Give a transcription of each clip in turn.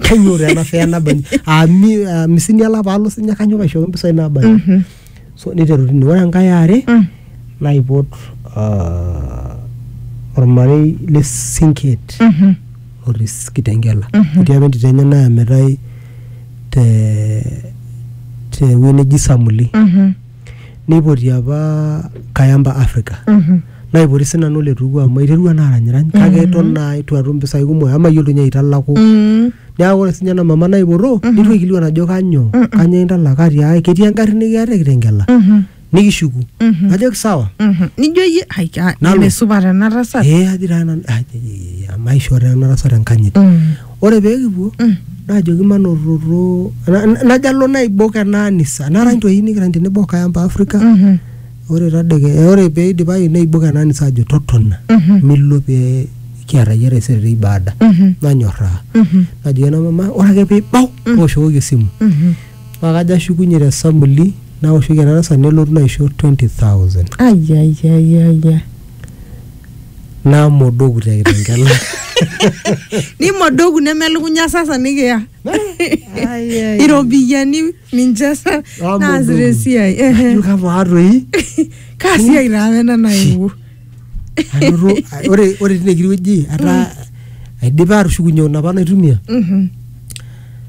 kanyoo taa ena fea nabani ah, mi- ah, amisini ala paalo sinya kanyoo paishooki mpisai nabani Mhm. so niteru tine ore enkae are Mm. naipot ah, ormarei le sinket Mhm. otii kitengela Mhm. etii apa entito enye nayametai te te wuei neji samuli Mhm. neipoti apa kayamba africa Mhm. naipoti sinanu ole tuku amu aiterua naa aranyirany kake eton naa itu atum mpisai kumok amu mayiolo ninye aitalaku Mm. neeku ore sinye ena mama naipoto nitu aikilikuan ajo kanyoo kanyoo intalak atiaaki ketii engarri nikiata ekitengela Mhm. nikishuku Mhm. najoki sawa Mhm. nijo yie ai ka- Nalo. mesupat ena tasat ee aji taa nanu aji- aji- aji- amu aishoo taa ena tasat enkanyit Mm. ore pee kipuo Mm. naajoki manototo na- na- najo alo naibok ena anisa nara ntoyie nikirany tenebo o kayamba africa Mhm. ore tadeke eh, ore pee idipayu neibok ena anisa ajo totona Mhm. milo pee kiata yie taisere te ibada Mhm. nanyorraa Mhm. najoki ena mama ore ake pee ibau tooshokoki esimu Mhm. paa kajo ashukunye te samuli naoshoki ena anisa nelotu naisho 20000 Ai, ai, ai, ai, ai. namodoku te kitengela nimodoku nemelukunya sasa nikiya iropiyiani ninche sa Amodoku. naasita esiai ehe. Ajo kamaa toi kaa siai taa apa ena naewuo anoto ore ore tine kiti wueji ataa aidipa atushukunye napa naitumia Mhm.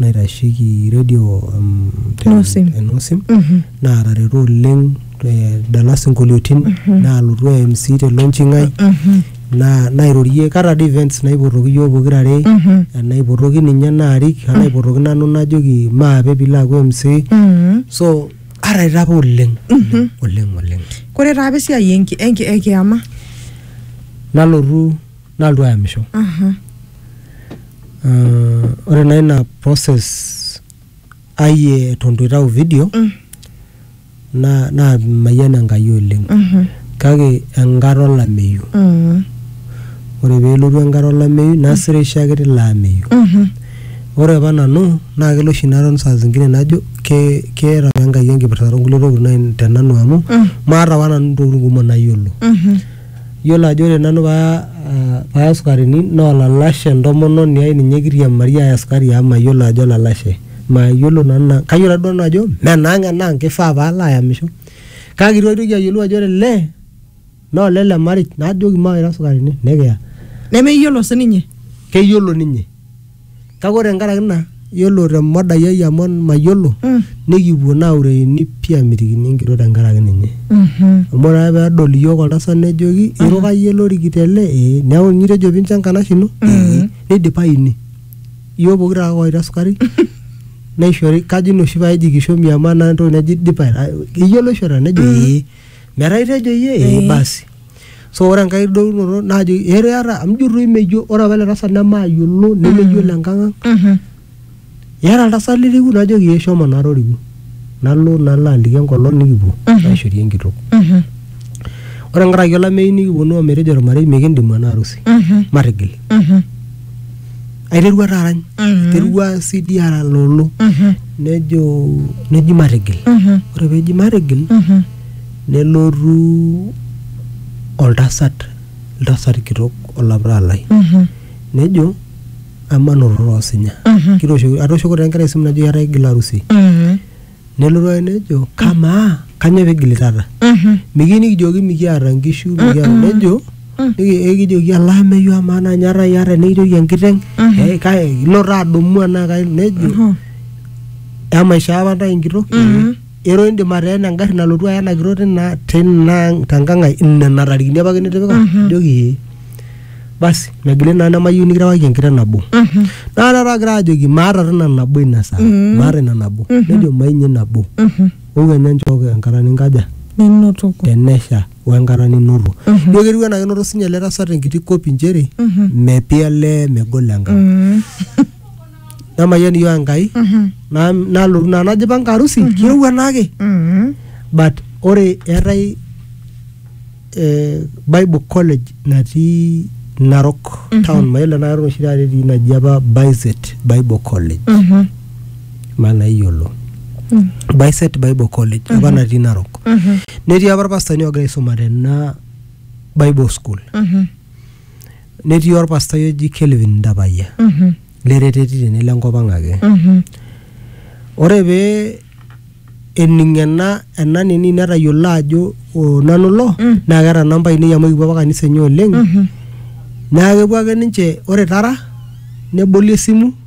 naitasheki radio um, te- Nosim. e Nosim Mhm. naatareto oleng eh, dala sinkolioitin naalotu aim sii te launching ai Mhm. naa nairorie kata dii events naipotoki iyiook pokirare Mhm. enaipotoki ninye naarik enaipotoki nanu najoki maape piilo aaku MC Mhm. so araita apa oleng oleng, oleng oleng kore taa apa esiai enki- enki- ekiyama nalotu nalotu ayamisho Mhm. uh, ore naa ina process ai eton itu aitau video Mm. naa naa mayian enkai oleng Mhm. kake enkata olameyu Mhm. ore peelotu enkata olameyu nasirisho ake tilo ameyu Mhm. ore apa nanu naa kelo oshi naton saa zingine najo ke keeta apa enkai enkipirta toonkulie tokitin nai- te nanu amu Mm. maata apa nanu ntokitin kumok nayiolo Mhm. Yiolo ajo ore nanu paya sukarini naa olalashe entomononi ai ninye kiriamari aya sukari amu mayiolo ajo olalashe. Mayiolo nanu ina, kayiolo ake duo nanu ajo mme enaang ena ang, kifaa paalo ayamisho. Kake itu aitoki ayiolou ajo ore ele naa ole le marriage najoki mawaita sukarini nikiya. Nemeyiolo siininye? Keyiolo ninye. Kake ore tenkaraki ina, yiolo te modai ai amu mayiolo, nikipuo naa aureeni pii amitikini enkitok tenkaraki ninye. Amu ore ake pedol iyiook oltasat nejoki, iruka iyie lorikito ele? Ee. Neeku ninye itejo pincho enkanashe ino? Ee. Nidipayu ine. Iyiook pokira aare kooita sukari, neishori kajo ina oshi pae eji kisho miama ena toki naji dipa. Iyiolo aishora? Nejo ee. Metaa itejo iyie? Ee basi. so ore enkae dotunoto naajo eeta eeta amu ijo toi meyiolo ore apa ele tasat nemayiolo nemeyiolo enkang ang Mhm. eeta oltasat liriku najoki ee shomo natoriku nalo nalo aliki enkolong nikipuo Mhm. naishori enkitok Mhm. ore tenkaraki olameyu nikiponu ometejo ormarei mikindim ena arusi Mhm. matigil Mhm. aiterua taa arany Mhm. aiterua sidi ara lolo Mhm. nejo neji matigil Mhm. ore peji matigil Mhm. nelotu oltasat ltasat kitok olaptaa lai Mhm. nejo amanoto toosinya Mhm. Kitooshoki- atooshoki taa enkerai esimu najoki etaa igila arusi Mhm. nelotu ake nejo kamaa kanyoo pigili taata Mhm. mikiyieu nikijoki mikiata nkishu mikiata Mm-mm. nejo Mm. niki- ekijoki olameyu amaa naa nyata iyata nikijoki enkiteng Mhm. eh, kake ilo taa adumu enaa kai nejo Mhm. emaisha apa ntae enkitok Mhm. ero indim ateena engarri nalotu aya ena kitok tina tina ang tenkang ai nena tarikini apake nitipika nijoki ee basi megili naa nemayieu nikirewaki enkiteng nabo Mhm. naa ore taata agira ajoki maata taa ina nabo ina saa Mm. maata ina nabo Mhm. nejo mainye nabo Mhm. ou kenya nchooki enkata ninkaja ninotoko tenesha wenkata ninoto Mhm. ijo ketiu enaa kenoto sinye ele tasat enkiti kopi nchere Mhm. mepi ele megol enkang Mhm. nemayian iyiook Enkai Mhm. na- nalotu naa najipanga harusi kiewuo enaake Mhm. but ore eetae eh, Bible College natii Narok Mhm. town mayiolo enaa oshi taata etii naji apa Biset Bible College Mhm. manayiolo Mhm. Biset Bible College apa natii Narok Mhm. netii apa irpastani ogira aisuma tena Bible school Mhm. Netii olpastai oji Kelvin Ndapayia Mhm. le Reteti tene le nkop ang ake. Mhm. Ore pee ening ena ena nini netayiolo ajo o nanu ilo Mm. naa keeta namba ainei amu ekipuo apa kanisa enye oleng. Mhm. Neeku kepuo ake ninche ore tara neboli esimu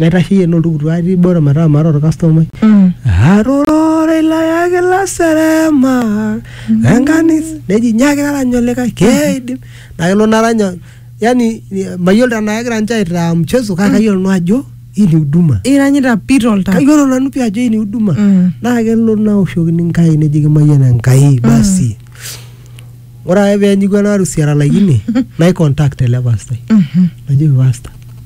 naitasheyie ele oltukutuk atii boo ometaa maata orkastomai aturore ilayaki laserema enkanisa neji nyaaki taranya olikae keidim naa kelo naranya yani mayiolo tenaa kegira ninche aitaa mchezo kake kayiolo nanu ajo hii ni huduma iranyita pii toltau kayiolo nanu pii ajo hii ni huduma Mm. naa kelo naoshokini Nkai neji kimayian Enkai basi ore ake peenyiku ena arusi etalaikine nai contact ele pastai najoki pasta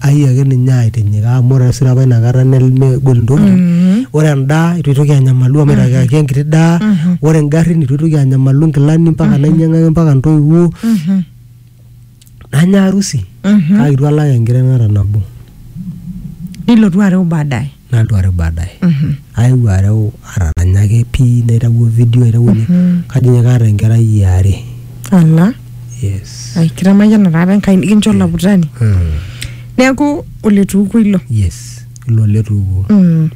ai ake ninye aitinyikaa amu ore sii apa inakata nel- megol intokitin ore endaa itu itoki anyamalu amu itakiaki enkiti daa ore ingarrin itu itoki anyamalu inkilani mpaka nainyiang'aki mpaka ntoiwuo nanya harusi kake itu alak enkiteng ata nabo nilotu areu baadaye nalotu areu baadaye aewuo areu ataranya ake pii naitawuo video aitawuo mm kajo ninye kaata enkerai iare ala yes ai kitamayiana taata enkai nikincho olaputani mm. neeku oletuuku ilo yes ilo letuukuo mm.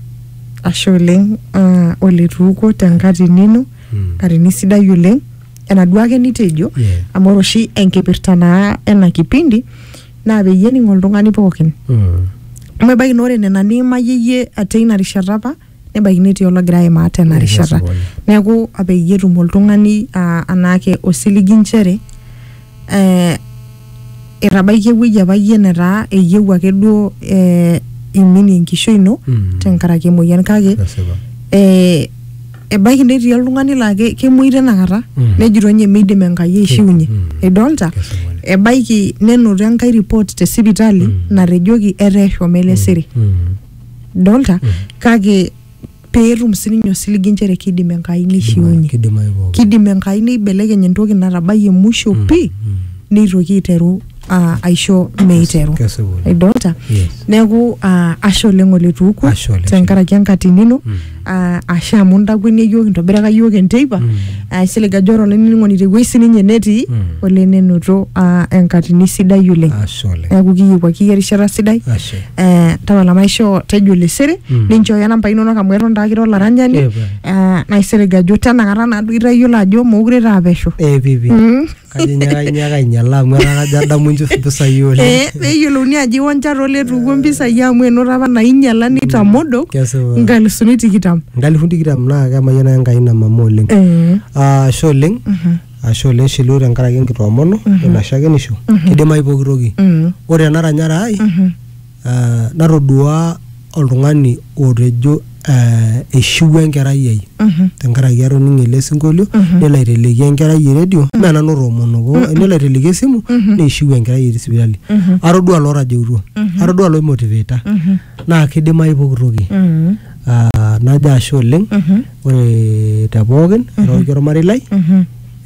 ashe oleng uh, oletuukuo tenkatini ino Mm. katini sidai oleng enaduake nitejo Yes. amu ore oshi enkipirta naa ena kipindi naa peyie ening oltung'ani pookin Mm. amu ebaiki naa ore nena niimayie iyie ate ina rishata apa nebaiki netii ologira aimaa tena Yes, rishata boy. neeku peyie etum oltung'ani ah, anaake osiligi nchere eh, etabaikia ewueji apa iyie netaa eyieu ake duo eh, iminie enkishui ino Mm. tenkaraki emoyian kake Nasipa. eh, ebaiki netii oltung'ani laa ke- kemuoi tenakata Mm. nejito ninye meidim enkai aishiunye Mm. idolta Kesipani. ebaiki nenoto enkai report te sipitali Mm. natejoki etaa eshomo ele siri Mm. idolta Mm. kake peetum sininye osiligi inchere kidim enkai nishiunye Kidimayu pooki. kidim enkai neibelekeny entoki natabayie musho pii Mm. neitoki aiteru ah, aisho meiteru kesipa oleng. idolta Yes. neeku ah, ashe oleng oletuuku Ashe oleng. tenkaraki enkatini ino Mm. ah, ashe amu ntakuenia yiok intobiraka yiok enteipa Mm. Ah, isilig ajo ore olainining'oni tewueji sininye netii Mm. ole nenoto ah, enkatini sidai oleng Ashe oleng. neeku kiyieu akeyie erishata sidai Ashe. Eh, tapala maishoo tejo lesere Mm. ninchooyo namba inonok amu eton taa kira olaranyani Epa. Eh, naisilig ajo tenakata naaduo itayiolo ajo mookure taa pesho Eh, pipi. Mm. kajo inyaaka inyaaka ainyalaa amu etaa kajo adamu incho mpisai oleng Eh, peyiolouni ajo iwanja toletuwuo mpisai amu enoto apa nainyala nitamodok kesipa nkalisuni tikitam nkalifu tikitam naa kemayiana enkai ina mama oleng Eh, Ah, ashe oleng ashe oleng shiliu tenkaraki enkitoomono ina shakenisho kidimayu pooki toki mm, ore enaranyare ai eh, natoduaa oltung'ani otejo eh, eishiwuo enkerai ai Mhm. tenkaraki atoning'o ele sinkolio nelo aiteleki enkerai e redio mme nanu otoomonoko nelo aiteleki esimu neishiu enkerai etii sipitali atodua lootajeutuo atodua loimotiveta naa kidimayu pooki toki Mhm. Ah, najo ashe oleng Mhm. ore te pookin ira olki ormarei lai Mhm.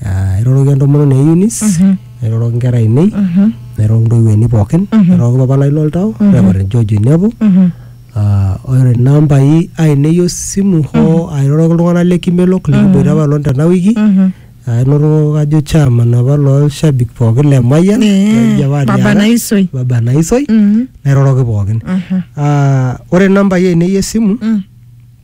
Ah, airoroki entomononi ai Eunice nairoroki inkera ainei nairoroki intoiwuo ainei pookin nairoroki papa lai loltau Reverend George Onyapu Ah, ore nambai ainei osimu hoo airoroki iltung'anak le kimelok likiboita apa olong tena wiki ainoto kajo chairman apa lolshabik pookin le Mayian Eji apa Baba atiaka- Naisoi. baba naisoi nairoroki pookin Ah, ore nambai ainei esimu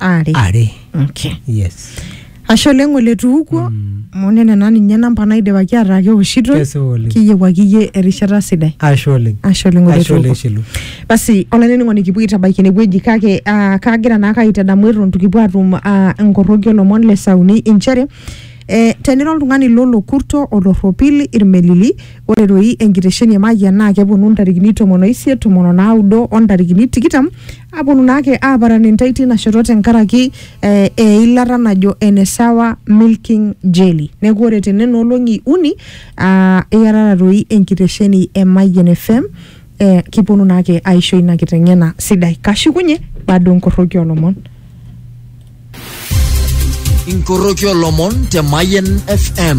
are are okay yes ashe oleng oletuukuo Mm. amu nene naa ninye namba naidipaki ataa keoshitoi Kesipa oleng. kiyieu akeyie erishata sidai ashe oleng ashe oleng ashe oletuukuo oleng shilu basi olainining'oni kipuo aitabaiki inewueji kake ah, kagira naa ake aitadamu eton itu kipuo atum ah, enkorroki olomon le sauni inchere eh, tenira oltung'ani lolokurto olorropil irmelili Ore doi enkitesheni e Mayian naa keponu ntarikini tomon o isiet, tomon o naudo o ntarikini tikitam aponu naake aaparan intae tina shoto tenkaraki eh, eilata najo ene sour milking jelly. Neeku ore te nena olong'i uni ah, iatata doi enkitesheni e Mayian FM eh, kiponu naake aisho ina kiteng'ena sidai. Kashukunye baada oo nkorroki oo lomon. Inkorroki oo lomon te Mayian FM.